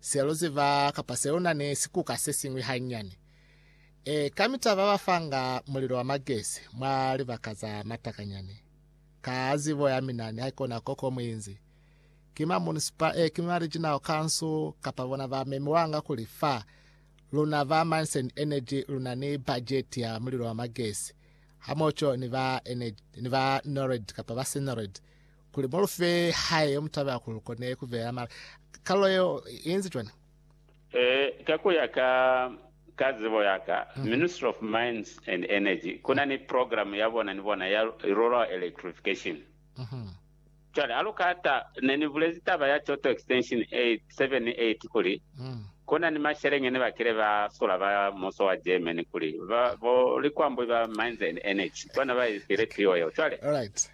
Se lu ziba kapa se lu na ni sikuka se siñwi hanyane. Ee, kamita ba ba fanga mulilo wa magesi mwa libaka za matakanyani. Ka zibo ya mina ni haikona koko mu inzi, ki ma municipal, ee, ki ma regional council kapa bona ba memiwanga kuli fa luna ba Mines and Energy lu na ni bajeti ya mulilo wa magesi hamoco ni ba, ni ba NORAD kapa ba Senorad, Kuli mu lu fe hae yo mu taba kuli lu kone ku beya mali. Kalulo yeo i inzi cwani? Ee, ka ku ya ka ka zibo ya ka, Ministry of Mines and Energy ku na ni program ya bona ni bona ya Rural Electrification. Cwale ha lu ka ta, ne ni bulezi taba ya Choto Extension 8, 7 ni 8 kuli, ku na ni masheleñi ne ba kile ba sula ba muso wa Germany kuli ba, bo likwambwi ba Mines and Energy bona ba i file piwo yeo. Cwale.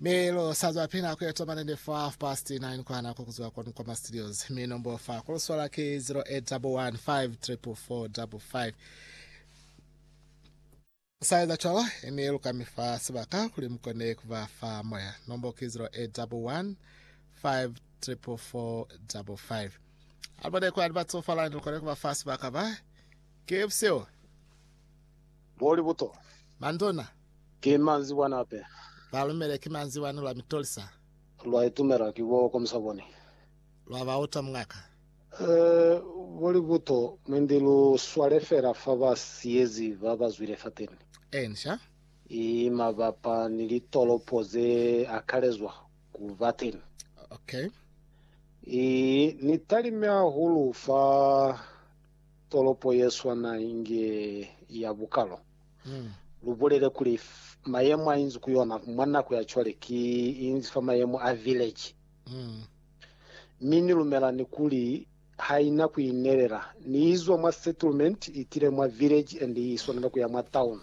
Mi lu sa zwa pina ku eto manende fa half past nine kwa nako ku zwa kwanu kwa ma studios. Mi nombo fa ku lu swala ki 0811544455. Sa eza cwalo, mi lu ka mi fa sibaka kuli mu kone ku ba fa moya. Nombo ki 0811544455. Alibone kwa ni ba tsofala ni lu kone ku ba fa sibaka ba. Ki busihu. Moli buto. Manduna. Ki manzibwani ape. Ba lumele ki manzibwani lwa mitolisa. Lwa itumela ki bo komisa boni. Lwa ba uta mungaka. Eh, moli buto, mwendi lu swale fela fa ba siyezi ba ba zwile fateni. Enca. I mabapa ni litolopo ze akalezwa ku ba teni. Okay. I ni talime hahulu fa Tolopo ye swana inge ya bukalo. Lu bulele kuli, mayemo a inzi ku yona mwa nako ya cwale ki inzi fa mayemo a village. Mi Ni lumela ni kuli ha ina ku inelela. Ni izwa mwa settlement itile mwa village and i swanela kuya mwa town.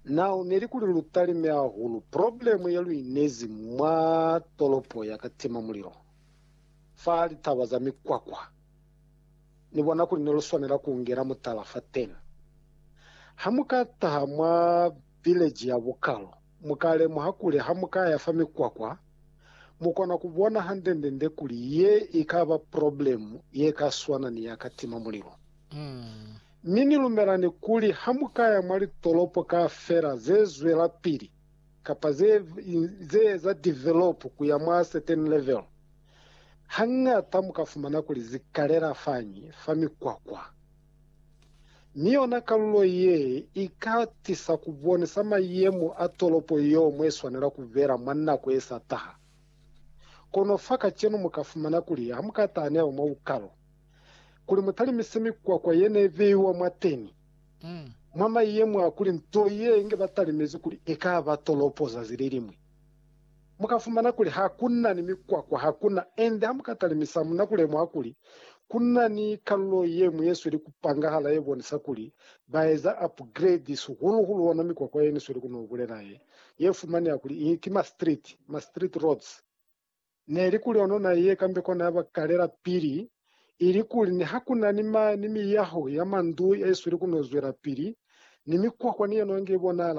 Now, neli kuli lu talime hahulu problem ye lu inezi mwa tolopo ya ka tima mulilo fa litaba za mikwakwa. Ni bona kuli ne lu swanela ku ngela mutala fateni. Ha mu ka taha mwa vileji ya bukalo, mu ka lemuha kuli ha mu ka ya fa mikwakwa, mu kona ku bona hande-ndende kuli ye i ka ba problemu ye ka swana ni ya ka tima mulilo. Mi ni lumela ni kuli ha mu ka ya mwa litolopo kaufela ze zwelapili kapa ze eza develop ku ya mwa certain level, Hañata mu ka fumana kuli zi kalela fañi fa mikwakwa, mi yona kalulo ye i ka tisa ku bonisa mayemo a tolopo yeo mwa i swanela ku bela mwa nako ye sa taha. Kono fa kacenu mu ka fumana kuli ha mu ka taha ni hao mwa bukalo, kuli mu talimise mikwakwa ye ne i beiwa mwateni, mwa mayemo a kuli nto ye inge ba talimezi kuli i ka ba tolopo zazi le liñwi. Mu ka fumana kuli ha ku na ni mikwakwa, ha ku na, ende ha mu ka talimisa, mu na ku lemuha kuli ku na ni kalulo ye ñwi ye sweli ku pangahala ye bonisa kuli ba eza upgrade, sihulu-hulu ona mikwakwa ye ni sweli ku no bulela ye, ye fumaneha kuli i ki ma-street, ma-street roads. Ne li kuli ono na ye kambe kona ya ba kalela pili, ili kuli ni ha ku na ni ma, ni miyaho ya mandu ye sweli ku no zwelapili, ni mikwakwa ni yona inge i bonahala.